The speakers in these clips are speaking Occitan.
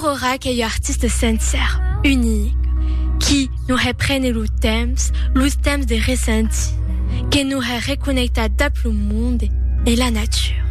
Aurora qu'ei ua artista sencèra, unica, qui non hè prene lo temps, lo temps de ressentir, que non hè reconnectar dab lo monde e la natura.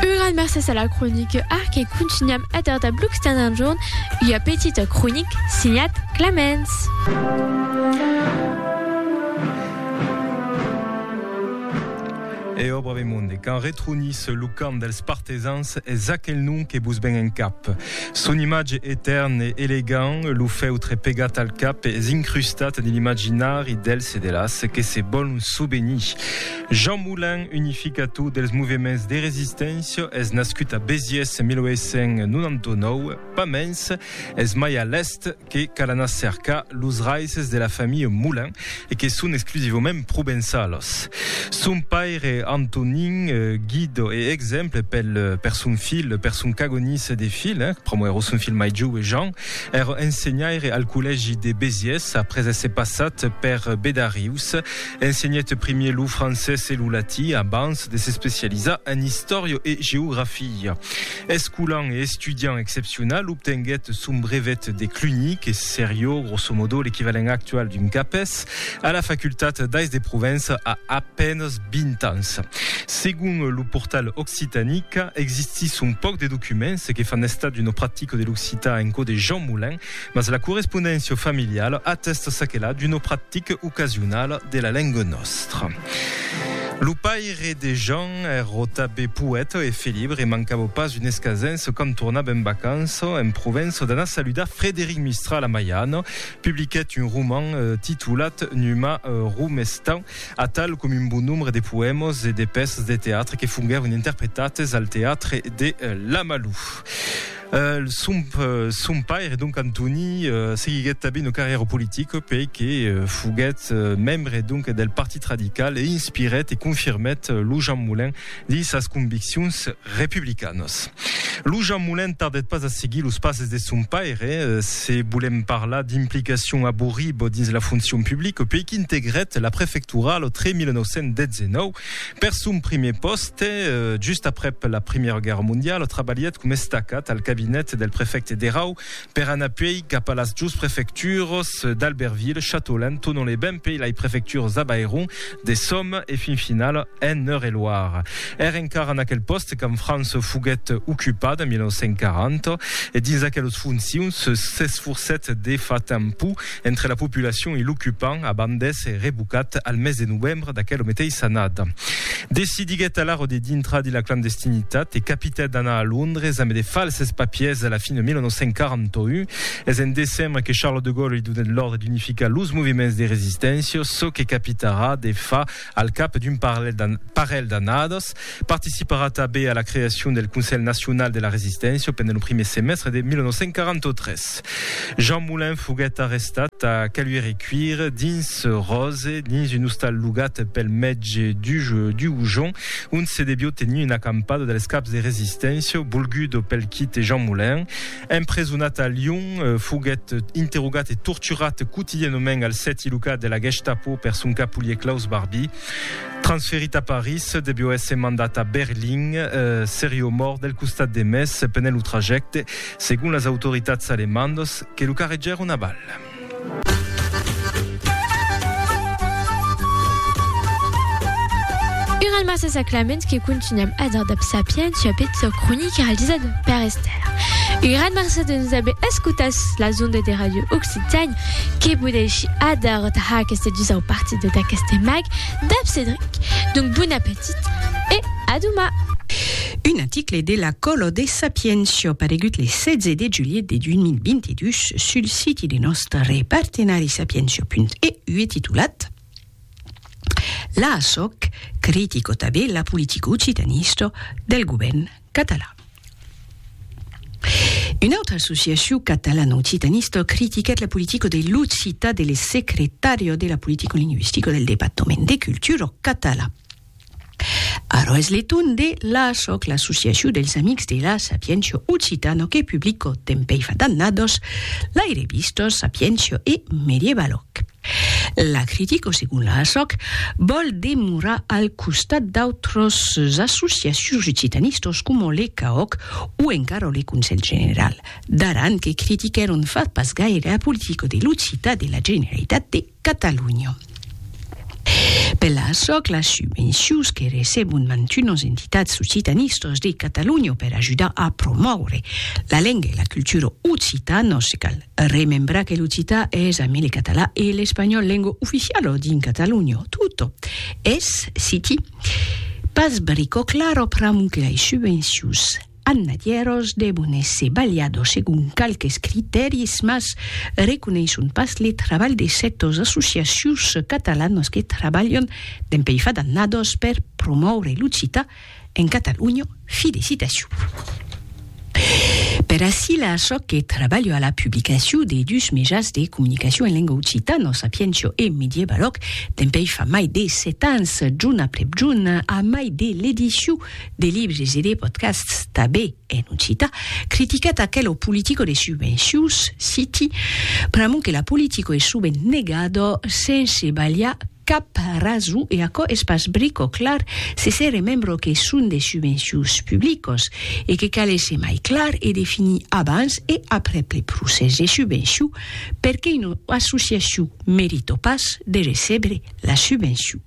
Un grand mercés a la cronique Arc e contunham èder dab Luxten enjorn ua petita cronique signat Clamens. Eò, brave monde, quand retronisse lo cant dels partisans, es aquel nom que vos ven en cap. Son imatge etèrn e elegant, lo fèutre pegat al cap, es incrustat dins l'imaginari dels e de las que se vòlon sovenir. Jean Moulin, unificator dels movements de resisténcia, es nascut a Béziers 1899, pas mens, es mai a l'èst, que cal anar cercar los raices de la familha Moulin e que son exclusivament provençalos. Son paire Antonin Guido e exemple pel per son filh, per son cagonís de filh, pr'amor ero son filh mai joue Jean, ero ensenhaire al collègi de Béziers après èsser passat per Bedarius. Ensenhèt primier lo francés e lo latí abans de s'especializar en istòria e geografia. Escolan e estudiant excepcional, obtenguèt son brevet de Cluny, que serió, grosso modo, l'equivalent actual d'un CAPES, a la Facultat d'Ais de Provença a a penes 20 ans. Segon lo portal Occitanica, existís son pauc de documents que fan estat d'una practica de l'occitan en cò de Jean Moulin, mas la correspondéncia familiala atèsta çaquelà d'una practica ocasionala de la lenga nòstra. Lo paire de Jean ero tabé poèta e felibre e mancabo pas un escasenço quand tornab en vacanço en Provenço d'anar saludar Frederic Mistral a Maiano. Publiquèt un roman titolat Numa Romestan, atal com un bon nombre de poèmas e de pèças de teatre que fonguèron interpretates al teatre de Lamalou. Son paire, donc Antoni, seguiguèt tanben una carrièra politica puèi que foguèt membre donc del Partit Radical e inspirèt e confirmèt lo Jean Moulin dins sas conviccions republicanas. Lo Jean Moulin tardèt pas a seguir los passes de son paire, se volèm parlar d'implicacion aborriba dins la foncion publica, puèi qu'integrèt la prefectura lo 3 1919 Per son primièr pòste, just aprèp la Primièra Guèrra Mondiala, trabalhèt coma estacat al cabinet del prefècte d'Erau per anar puèi cap a las dus prefecturas d'Albertville, Châteaulin, Thonon-les-Bains puèi lai prefecturas d'Avairon, de Somme e fin finala en Eure-et-Loir. Ère encara en aquel pòste quand França foguèt ocupada en 1940 e dins aquelas foncions s'esforcèt de far tanpau Entre la populacion e l'ocupant a bandes e revocat al mes de novembre d'aquela meteissa annada. Decidiguèt alara de dintrar de la clandestinitat e capitèt d'anar a Londres ambe de falses papiers a la fin de 1941. Es en decembre que Charles de Gaulle li donèt l'òrdre d'unificar los movements de resisténcia, çò que capitarà de far Al cap d'un parelh d'annadas, participarà tanben a la creacion del Conselh Nacional de la Resisténcia pendent lo primièr semèstre de 1943. Jean Moulin foguèt arrestat a Caluire-i-Cuire dins Ròse dins un ostal logat pel mètge Duhoujon, ont se devió tenir una acampada dels caps de resisténcia, volguda pel quite Jean Moulin. Empresonat a Lyon, foguèt interrogat e torturat quotidianament al sèti locat de la Gestapo per son capolier Klaus Barbie. Transferit a París, devió èsser mandat a Berlin. Serió mòrt del costat de mes pendent lo trajècte, segon las autoritats alemandas, que lo carregèron a bal. Ur al Marcès a Clamens que contunham a dar dab sapiéncia peth sò cronic realizat per Esther. Un gran marcès de nos aver escotats sus las ondes de Radio Occitània que podeishi adar tà aqueste dusau partida d'aqueste mag dab Cedric. Donc bon apetit e a doman! Un aticle de la Colo de Sapientia paregut le 16 de juliet de 2020. dus sul siti de nòstre partenari Sapientia.eu titulat L'ASOC critico tabé la politica occitanista del govèrn catalan. Una autra associacion catalana occitanista critiquèt la politica de l'occitan de l'secretària de la politica lingüistica del departament de cultura catalan. Ara es le torn de l'ASOC, l'Associacion dels Amics de la Sapiéncia Occitano que publico tempèi fa d'annados lai revistos Sapiéncia e Medievaloc. La critico segon l'ASOC vòl demorar al costat d'autras associacions occitanistas coma le CAOC o encara le Conselh General d'Aran que critiquèron fa pas gaire a politica de l'occitan de la Generalitat de Catalonha. Per açò, las subvencions que recebon mantunas entitats occitanistas de Catalonha per ajudar a promòure la lenga e la cultura occitanas, cal remembrar que l'occitan es, amé le catalan e l'espanhòl, lenga oficiala dins Catalonha tota, es, citi, pas brica clara pr'amor que las subvencions. Annadièros devon èsser balhados segon qualques critèris, mas reconeisson pas le trabalh de sètos associacions catalanas que trabalhan dempuèi fa d'annados per promòure l'occitan en Catalonha. Fi de citacion. Per ací la çò que trabalho a la publicacion de dus mejans de comunicacion en lenga occitana, Sapientia e Medievaloc, dempuèi fa mai de sèt ans, jorn aprèp jorn, a mai de l'edicion, de libres e de podcasts tanben en occitan, criticat aquelo politico de subvencions, citi, pr'amont que la politico es sovent negada sense balhar cap rason e aquò es pas brico clar se se remembra que son de subvencions publicas e que cal èsser mai clar e definir abans e aprèp le procès de subvencion perqué una associacion merita pas de recebre la subvencion.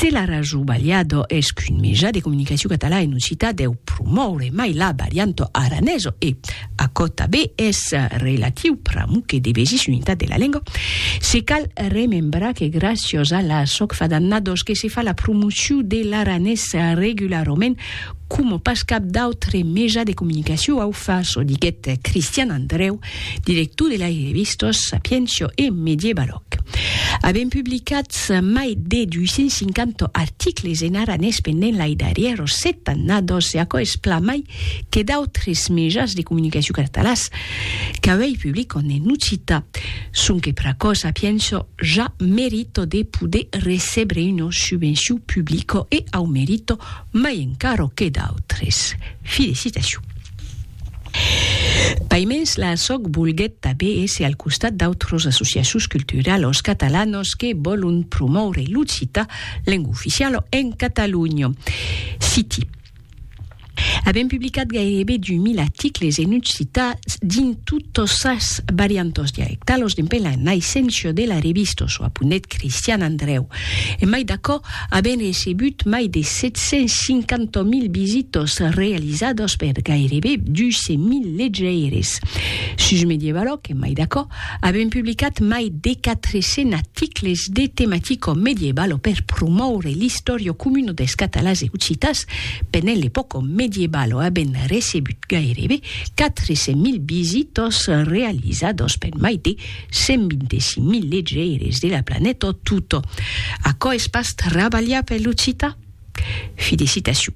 Se la Raju Balha do es qu'un meja de comunicacion catalan en occitan deu promòure mai la varianta aranesa e, aquò tabé es relatiu pr'amor que devesís unitat de la lenga, se cal remembrar que gràcias a la soc fa d'annadas que se fa la promocion de l'aranés regularament coma pas cap d'autre meja de comunicacion au fa, çò diguèt Cristian Andreu, Director de las revistas Sapientia e Medievaloc. Avèm publicats mai de 250 articles en aranés pendent lai darrièros set annadas e aquò es plan mai que d'autres mejans de comunicacion catalans qu'auei publican en occità. Sonque per aquò Sapientia ja merita de poder recebre una subvencion publica e au merita mai encara que d'autres. Felicitacion. Paimens la assoc volguèt tabé èsser al costat d'autros associacions culturalos catalanos que vòlon promòure l'occita, lenga oficiala en Catalonha. Citi. Avèm publicat gairebe 2000 articles en occita dins totas sas variantas dialectalas dempen la naissencia de la revista Çò aponèt Cristian Andrèu. Emai d'aquò, Avèm recebut mai de 750.000 visitas realizadas per gairebe 200.000 legeires. Sus Medievaloc, en mai d'aquò, avèm publicat mai de 400 articles de tematica medievala per promòure l'istòria comuna dels catalans e occitans pendent l'epòca medievala. Avèm recebut gairebe 400.000 visitas realizadas per mai de 125.000 legeires de la planeta tota. Aquò es pas trabalhar per l'occitan? Felicitacion.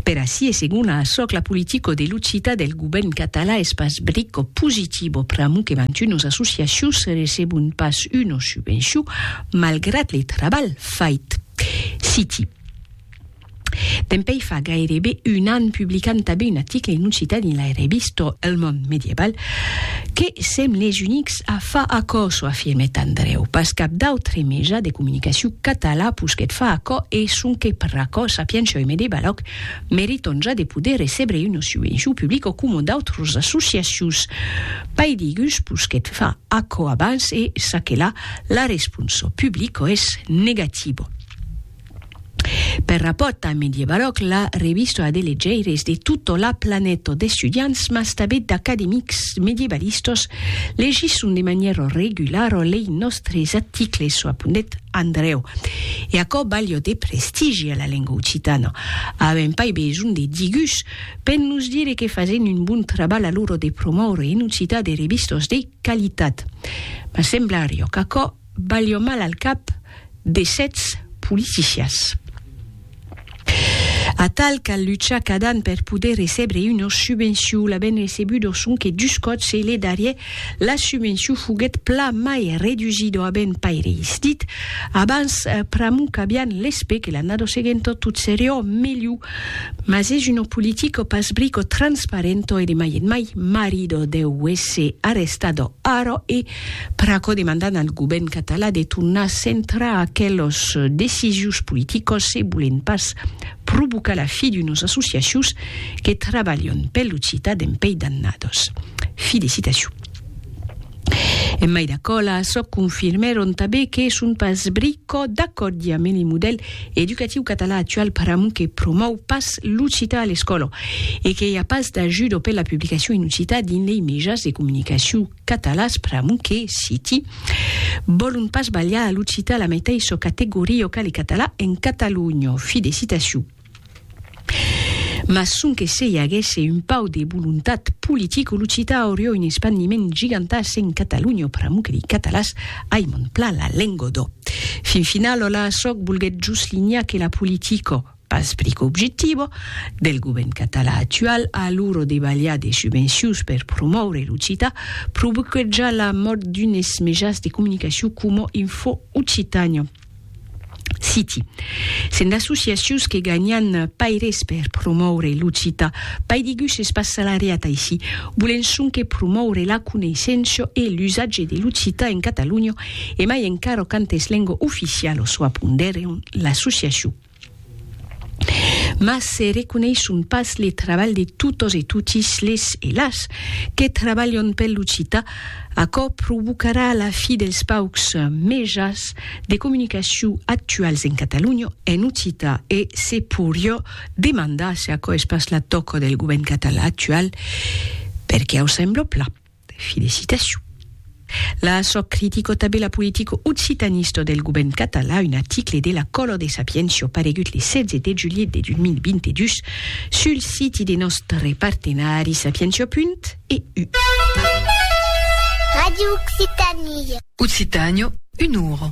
Per ací e segon a açò que la politica de l'occitan del govèrn catalan es pas brica positiva pr'amor que mantunos associacions recebon pas una subvencion malgrat le trabalh fait. Citi. Dempèi fa gairebe un an publicam tanben un article en occitan en la revista El Món Medieval que sèm les unics a far aquò, çò afirmèt Andrèu, pas cap d'autre meja de comunicacion català posquèt far aquò e sonque per aquò Sapientia e Medievalòg meriton ja de poder recebre una subvencion publica o coma d'autras associacions paidigus posquèt far aquò abans e çaquelà la responsa publica es negativa. Per rapòrt damb Mediebaròc, la revista a de legeires de tota la planeta, d'estudiants mas tabet d'academics medievalistas, legisson de manièra regulara lei nòstres articles, çò apondèt Andrèu. E aquò balha de prestigi a la lenga occitana. Avèm pas besonh de digus per nos dire que fasen un bon trabalh a l'ora de promòure en occitan de revistas de qualitat. Mas semblaria qu'aquò balhò mal al cap de sètz politicias. Atal cal luchar cadan per poder recebre unos subvenciu, l'avent recebut o sonque dus còps e le darrier la subvenciu foguèt pla mai redusida o avent pas reistit, abans pr'amu qu'avián l'espè que l'annada seguenta tot seriá melhu. Mas es una politica pas bric o transparenta e de mai en mai marida deu èsser arrestada ara e Per aquò demandan al govèrn catalan de tornar centrar aquelos decisius politicos se volen pas provocar la fi d'unos associacions que trabalhon per l'occitan en Pei Dannados. Fi de citacion. En mai d'aquò, la Assoc confirmèron tanben que son pas brico d'acòrdi a mene modèl educatiu catalan actual pr'amor que promòu pas l'occitan a l'escòla e que i a pas d'ajuda per la publicacion en occitan dins lei mejas de comunicacion catalàs pr'amor que, citi, vòlon pas balhar a l'occitan a la meteis çò categoria o qu'ale català en Catalonha, fi de citacion. Mas sonque se i aguèsse un pauc de volontat politic o l'occitan auriá un espandiment gigantàs en Catalonha pr'amor que dei catalàs ai mon plan la lenga d'ò. Fin final, òla, sòc, volguèt jos linhar que la politica, Pas plic objectiva, del govèrn catalan actual a l'ora de balhar de subvencions per promòure l'occitan, provoquèt ja la mòrt d'unes mejans de comunicacion coma Info Occitània. Citi. Se'n d'associacions que ganhan pas res per promòure l'occitan, pas digús es pas salariat aicí, volen sonque promòure la coneissença e l'usatge de l'occitan en Catalonha e mai encara quand es lenga oficiala, çò apondèron l'associacion. Mas se reconeishon pas le trabalh de totos e totis les e las que trabalhon pel l'occitan, aquò provocarà la fi dels paucs mejans de comunicacion actuals en Catalonha en occitan e se porió demandar se aquò es pas la tòca del govèrn catalan actual, perqué ausembla plan. Felicitacion. La sò critico tabé la politico occitanista del govern català un article de la Color de Sapientia paregut le 16 de julhet de 2022 sul siti de nòstre partenari sapientia.eu. Radio Occitanie. Occitània, un ora.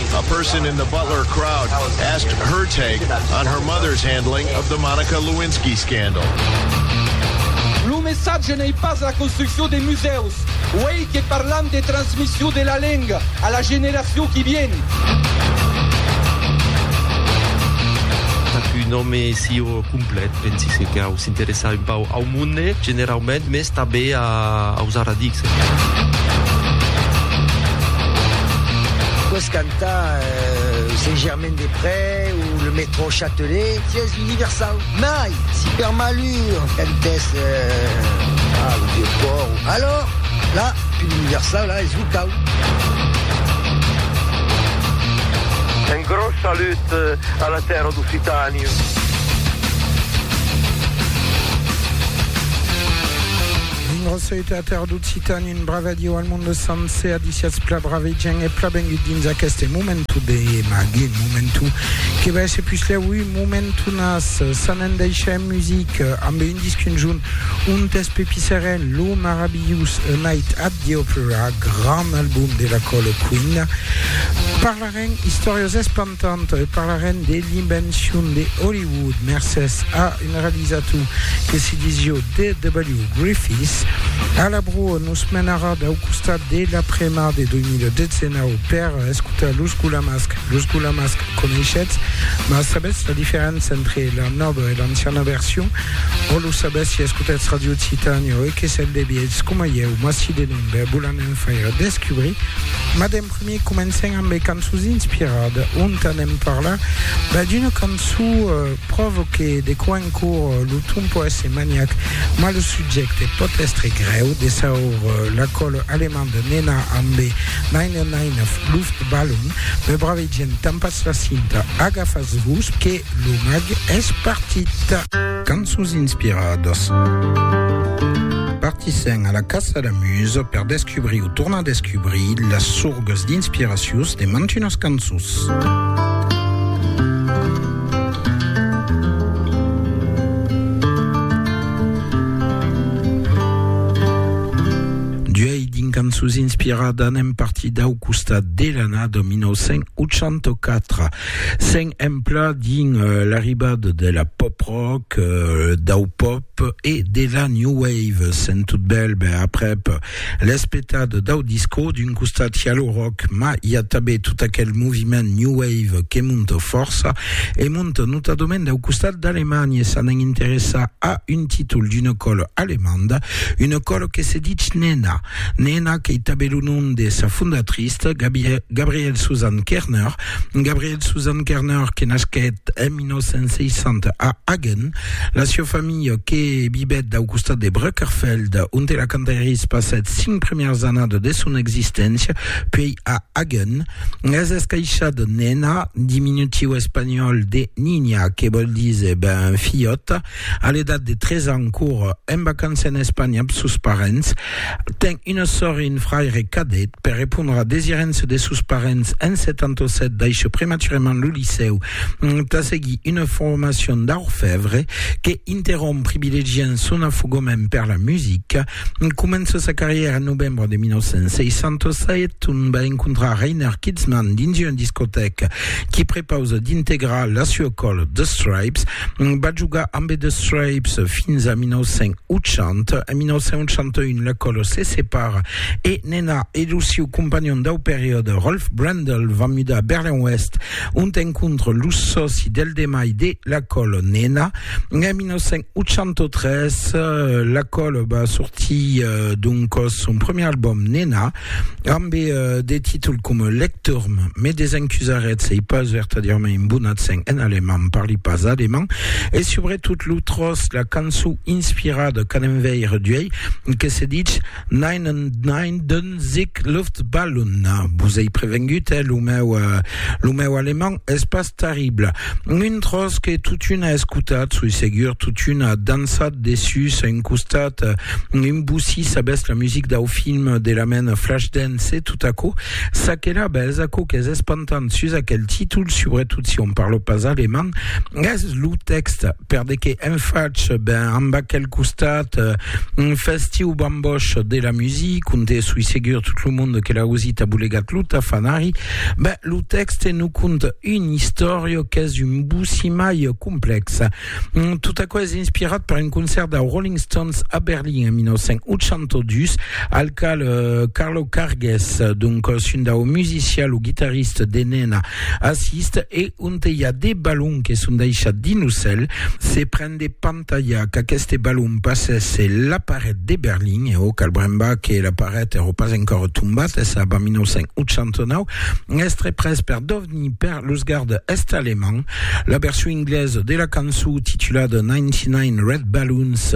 A person in the Butler crowd asked her take on her mother's handling of the Monica Lewinsky scandal. Lo messatge n'ei pas la construccion de musèus, uèi que parlam de transmission de la lenga a la generacion qui vien. Ac un òme si o. Complet, pensi se cau s'interessar un pauc au monde generaument, mès tanben aus arradics. Pòs cantar Saint-Germain-des-Près o le Métro Châtelet, sièis universau. Mai, si per malur cantès au Vieux-Pòrt, alòr, la, pus universau, la, es locau. Un gròs salut a la tèrra d'Occitània. Grosseita a Terre d'Occitània, un brave adieu al monde sencer, adiciatz pla brave gent e pla bengut dins aqueste momentu de mag, un momentu que va èsser puslèu un momentu nas, s'an en deishèm music amb un disc un junt, un test Pepi Seren, lo marabilhous A Night at the Opera, grand album de la Colo Queen. Parlarem istòrias espantantas e parlarem de l'invencion de Hollywood mercés a un realizator que se disió D.W. Griffith. A la broa nos menarà dau costat de la premar de 2019 per escotar Los Gulamasc. Los Gulamasc coneishetz, mas sabetz la diferença entre la nòva e l'anciana version? O lo sabetz si escotetz Radio Occitània e que se'n devietz, coma ieu, m'acidenem, ben vos l'anem faire descubrir. Mademp. Me comencem amb es cançons inspirades, ont anem parlar ben d'una cançon pròvo que de quò en quò lo ton pò èsser maniac, mas lo subjècte pòt èstre grèu, de saur la còl alemand de Nena amb e Neine Neine Luftballon, me bravegem, tampas la cinta, agafas vos que lo mag es partit. Cançons inspiradas. Partissèm a la caça la musa per descubrir o tornar descubrir las sorgas d'inspiracius de mantunas cançons. Cançons inspiradas anem partir dau costat de l'annada 1984. S'en empla dins l'arribada de la pop rock, dau pop e de la new wave. Sent tot bèl ben aprèp l'espetada dau disco, d'un costat i a lo rock, ma i a tanben tot aquel moviment new wave que monta fòrça e monta notadament dau costat d'Alemanha. E s'anem interessar a un títol d'una còla alemanda, una còla que se ditz Nena. Nena qu'ei tanben lo nom de sa fondatrista, Gabrielle Susanne Kerner, Gabriel Susan Kerner, que nasquèt en 1960 a Hagen, la sieu familha que vivèt dau costat de Brückerfeld, onte la Cantaeris passèt cinc premièrs annadas de son existéncia, puèi a Hagen, es escaishad Nena, diminutiu espanhòl de Niña, que vòl díser ben filhòta, A l'edat de 3 ans cor en vacança en Espanha amb sos parents. Ten una sòr e un fraire cadet. Per repondre a desirença de sos parents en 77 daishè prematurament lo licèu tà seguir una formacion d'orfèvre que interromp privilegiant son afogament per la musica. Comença sa carrièra en novembre de 1967, ont va encontrar Reiner Kitzman dins una discotèca qui prepausa d'integrar la sua còla The Stripes. Va jogar ambe The Stripes fins a 1980. En 1981 la còla se separa e Nena e lo siu companhon dau periòde Rolf Brendel van mudar a Berlin-Oèst ont encontra lo sòci del demai de la còla Nena. En 1981 803, La Colle va sortir donc son premier album Nena amb des títols com Lecturm, Me desencusarèt, sei pas vertadièrament un bon accent en alemand, parli pas alemand, e subretot lo Trost, la cançon inspirada qu'an enveire d'uèi, que se ditz Nein und Nein, Sic Luftballon, vos ei prevengut, eh, lo meu, lo meu alemand es pas terrible. Un tros que totuna escotat, soi segur, totuna dansat dessus un costat, un bussi sabètz la music dau film de la mena Flashdance e tot aquò, ça que la bètz, aquò qu'es espantant sus aquel títol, subretot si on parla pas alemand, es lo tèxte, per de que en fach, ben, amb aquel costat, Un festiu bamboch de la musique, conte sui segur tot lo monde que la Rosita bolegat lo tafanari, ben, lo texte nous conte une histoire qu'es un boussimaille complexe. Mm, tout aquò es inspirat per un concert de Rolling Stones a Berlin en 1982, al cal euh, Carlo Cargues, donc euh, un dau musicien, lo guitariste de Nena, assiste e on te hi a des ballons que son deixats dins lo cel, se pren des Tantalha qu'aqueste balon passèsse la paret de Berlin, e òc, al brembar que la paret èrò pas encòra tombat, es ab a 1989, èstre pres per Dovny per los garde est-alemand. La version inglesa de la cançó titulada 99 Red Balloons,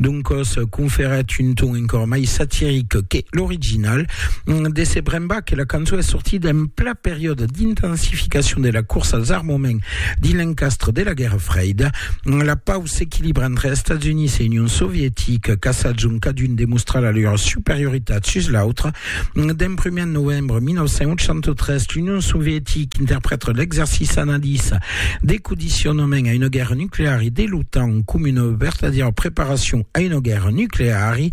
doncòs, conferèt un ton encòra mai satiric que l'original. De se brembar que la cançó es sortida en pla periòde d'intensificacion de la corsa als armaments Dins l'encastre de la Guèrra Freida, la pau s'equilibra entre Estats Units e Union Sovietica, caçats ont cadun demostra la lor superioritat sus l'autre. D'en prumèr en novembre 1983, l'Union Sovietica interprèta l'exercici anadís de codicionament a una guèrra nucleari de l'OTAN coma una vertadièra preparacion a una guèrra nucleari.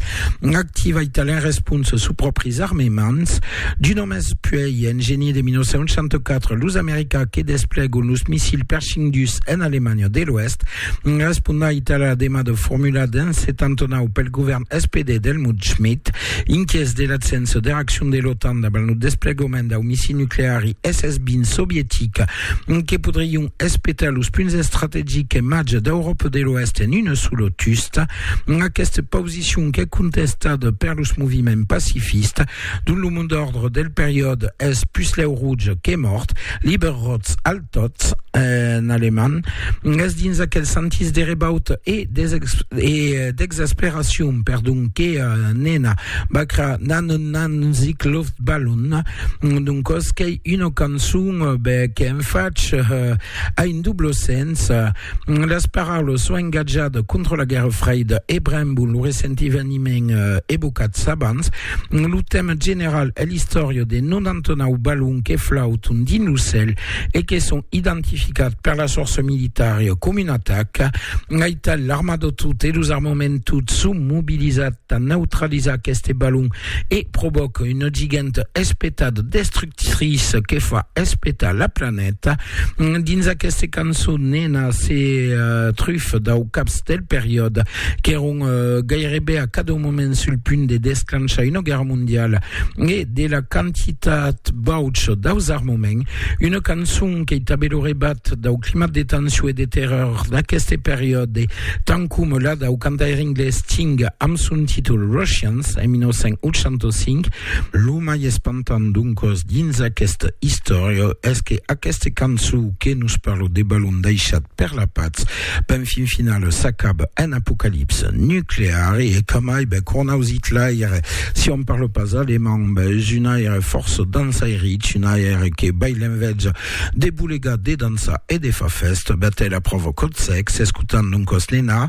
Activa italien response sus pròpris armements d'un òmes puèi en genier de 1964 los americans que desplegon los missils Pershing dus en Alemanha de l'Oèst responda Itàlia la demada formulada en 79 pel govèrn SPD d'Helmut Schmidt inquièts de l'absença de reaccion de l'OTAN davant lo desplegament dau missil nucleari SS-20 sovietic que podrion espetar los punts estrategics e màger d'Euròpa de l'Oèst en una sola tusta Aquesta posicion qu'es contestada per los moviments pacifistes, dont lo mot d'òrdre del periòde es puslèu rouge que mòrt, lieber rot als tods, en alemand, es dins aquel sentís de rebauta e d'exasperacion, perdon, que Nena Bacra n'a non nan zic Loftballon, doncòs qu'ei una cançon qu'en fach a un doble sens, Las paraulas s'au engatjat contra la Guèrra Freida e brembon lo recent eveniment evocats abans. Lo tèma general es l'istòria de 99 balons que flauton dins lo cèl e que son identificats per las fòrças militaras coma una ataca. Aital, l'armada tota e los armaments tots son mobilizats tà neutralizar aqueste balon e provòca una giganta espetada destructriça que fa espetar la planeta. Dins aquesta cançon, Nena se trufa dau caps del periòde qu'èron gairebe a cada moment sul punt de desclanchar una guèrra mondiala e de la quantitat baucha daus armaments. Una cançon qu'ei tanben lo rebat dau climat de tension e de terror d'aqueste periòde Tant coma la dau cantaire anglés Sting amb son títol Russians en 1985, lo mai espantant doncòs dins aquesta istòria es que aquesta cançó que nos parla de balon daishat per la patz, ben fin finala s'acaba en apocalipsa nucleara e que mai ben cornaus Hitlaire, si òm parla pas alemand, ben es un aire fòrça dansairich, un aire que bai l'envètja De bolegar, de dançar e de far fèsta, Bertèla provocòt sèc, s'escotant non còs Nina,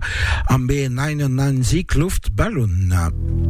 Ambe un aina nan zic, luft, balon.